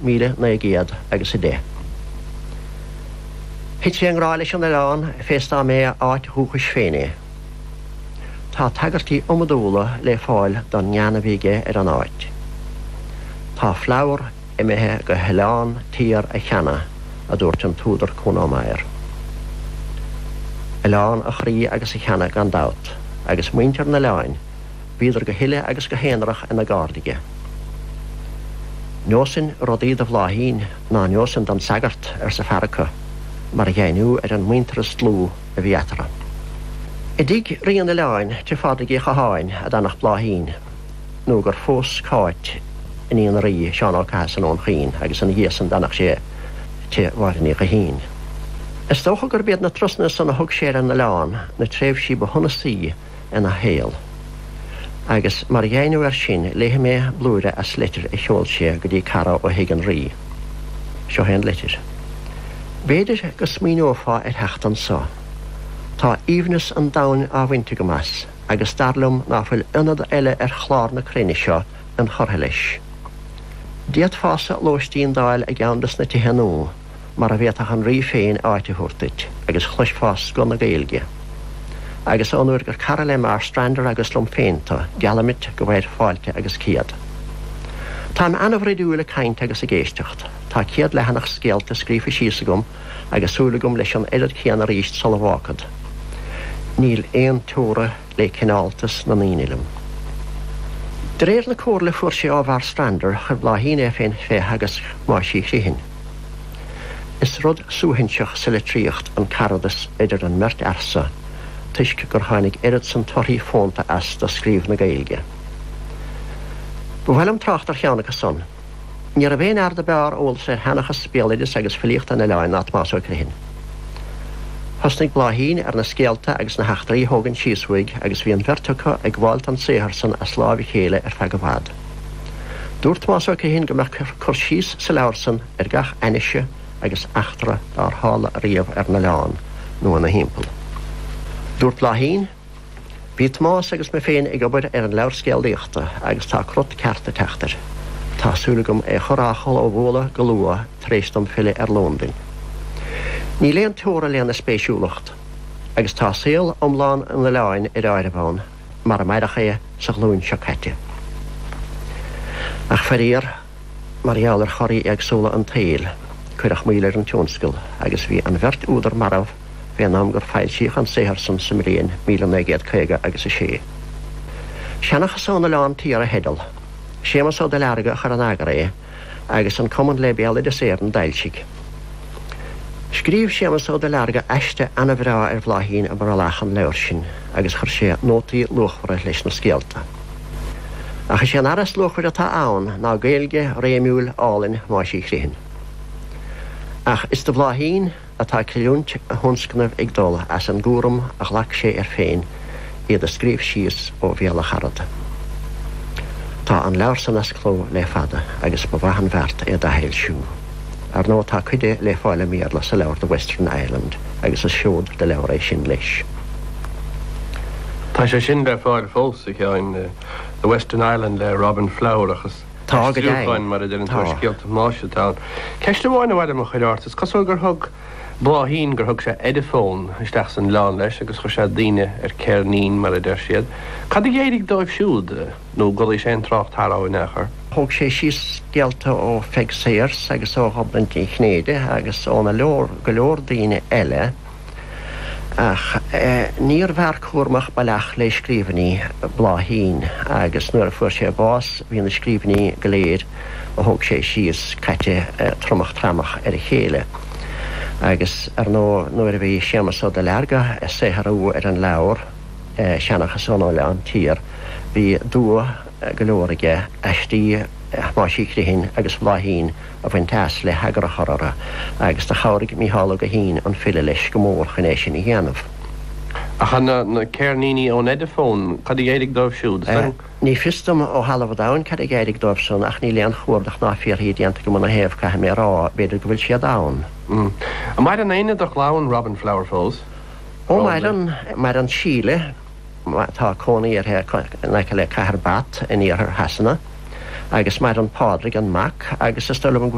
míle naoi gcéad agus a deich. Thit sé i ngrá leis an oileán fés dá mb'é a áit dhúchais féin é. Tá tagairtí iomadúla le fáil don ngean a bhí aige ar an áit. Tá Flower imithe go hOileán Tiar a cheana, a dúirt an t-údar Kuno Meyer. Oileán a chroí agus a cheana gan dabht, agus muintir an oileáin, Bhíodar go huile agus go haonarach ina gcairde aige. Neosainn rudaí do Bhláithín ná neosainn don sagart, arsa fear acu, mar dheimhniú ar an muintearas dlúth a bhí eatarthu. I dtigh Rí an Oileáin, tigh Phádraig Uí Chatháin, a d'fhanfadh Bláithín nó gur phós Cáit iníon an Rí, Seán Ó Cathasaigh i nDún Chaoin, agus ina dhiaidh san d'fhanfadh sé tigh Mháire Ní Ghuithín. Is dócha gurb iad na turasanna san a thug sé ar an Oileán na tréimhsí ba shonasaí, ina shaol. Agus mar dheimhniú air sin, léifidh mé blúire as litir a sheol sé go dtí cara ó Thigh an Rí. Seo é an litir. B'fhéidir go smaoineofá ar theacht anso. Tá aoibhneas an domhain á bhaint agam as, agus dar liom ná fuil ionad eile ar chlár na cruinne seo inchurtha leis. D'fhéadfása lóistín d'fháil i gceann de sna tithe nua. mara bhféadfadh an Rí féin áit a thabhairt duit agus chloisfeá scoth na Gaeilge. Agus ón uair gur cara le Marstrander agus liom féin tu, geallaim duit go bhfaighir fáilte agus céad. Táim ana-bhroidiúil ag caint agus ag éisteacht, tá céad leathanach scéalta scríofa síos agam agus súil agam leis an oiread céanna arís sula bhfágfad. Níl aon teora le cineáltas na ndaoine liom. De réir na comhairle a fuair sé ó Mharstrander, chuir Bláithín é féin fé theagasc Thomáis Uí Chrithin. Is rud suaithinseach sa litríocht an caradas idir an mbeirt fhear so toisc gur tháinig oiread san torthaí fónta as do scríobh na Gaeilge. Ba mhaith liom trácht ar cheann acu san. Ní raibh aon fhear do b'fhearr eolas ar sheanchas, béaloideas agus filíocht an oileáin ná Tomás Ó Crithin. Thosnaigh Bláithín ar na scéalta agus na heachtraí a thógaint síos uaidh agus bhí an bheirt acu ag gabháil don saothar san as láimh a chéile ar feadh i bhfad. Dúirt Tomás Ó Criomhthain go mbeadh cur síos sa leabhar san ar gach ainnise agus eachtra dár tharla riamh ar an oileán nó ina thimpeall. Dúirt Bláithín, Bhí Tomás agus mé féin ag obair ar an leabhar scéalaíochta agus tá crut ceart ag teacht air. Tá súil agam é chur á chlóbhualadh go luath tar éis dom filleadh ar Londain. Níl aon teora lena spéisiúlacht agus tá saol iomlán an oileáin ar áireamh ann. mar a maireadh é sa ghlúin seo caite. Ach faraor, mar gheall ar choraí éagsúla an tsaoil, cuireadh moill ar an tionscal agus bhí an bheirt údar marbh fén am gur foilsíodh an saothar san sa mbliain míle naoi gcéad caoga agus a sé. Seanchas ón Oileán Tiar a theideal. Séamus Ó Duilearga a chuir in eagar é. agus an Cumann le Béaloideas Éireann d'fhoilsigh. Scríobh Séamas Ó Duilearga aiste an-bhreá ar Bhláithín i mbrollach an leabhair sin agus chuir sé nótaí luachmhara leis na scéalta. Ach is é an earra is luachmhaire atá ann ná Gaeilge réimiúil álainn Thomáis Uí Chrithin. Ach is do Bhláithín. atá creidiúint a thionscnaimh ag dul as an gcúram a ghlac sé air féin iad a scríobh síos ó bhéal a charad. Tá an leabhar san as cló le fada agus ba mhaith an bheart é d'athfhoilsiú. Ar ndóigh tá cuid dé le fáil i mBéarla sa leabhar The Western Island agus is seod de leabhar é sin leis. Tá sé sin le fáil fós is ea The Western Island le Robin Flower ach is. Tá go deimhin, tá. Ceist amháin a mhaith liom a chur ort, is cosúil gur thug Bláithín, gur thug sé Ediphone isteach san oileán leis agus chuir sé daoine ar ceirnín, mar a deir siad. Cad a d'éirigh dóibh siúd? Nó an bhfuil aon trácht orthu in aon chor? Thóg sé síos scéalta ó Pheig Sayers agus ó Ghobnait Ní Chinnéide agus ó na leor, go leor daoine eile. Ach níorbh fhear cúramach ab ea le scríbhinní Bláithín agus nuair a fuair sé bás bhí na scríbhinní go léir a thóg sé síos caite tromach tramach ar a chéile. Agus ar ndóigh nuair a bhí Séamas Ó Duilearga ag saothrú ar an leabhar Seanchas ón Oileán Tiar bhí dua, go leor aige, aistí Thomáis Uí Chrithin agus Bhláithín a bhaint as le heagar a chur orthu, agus do chabhraigh Mícheál Ó Guithín, an file, leis go mór chun é sin a dhéanamh. Ach na ceirníní ón Ediphone, cad a d'éirigh dóibh siúd? Ní fios dom ó thalamh an domhain cad a d'éirigh dóibhsan, ach níl aon chuardach ná fiafraí déanta agam ina thaobh, caithfidh mé a rá. B'fhéidir go bhfuil siad ann. An maireann éinne de chlann Robin Flower fós? Ó, maireann. Maireann Síle. Tá cónaí uirthi in aice le cathair Bath in iarthar Shasana agus maireann Pádraig, an mac, agus is dóigh liom go.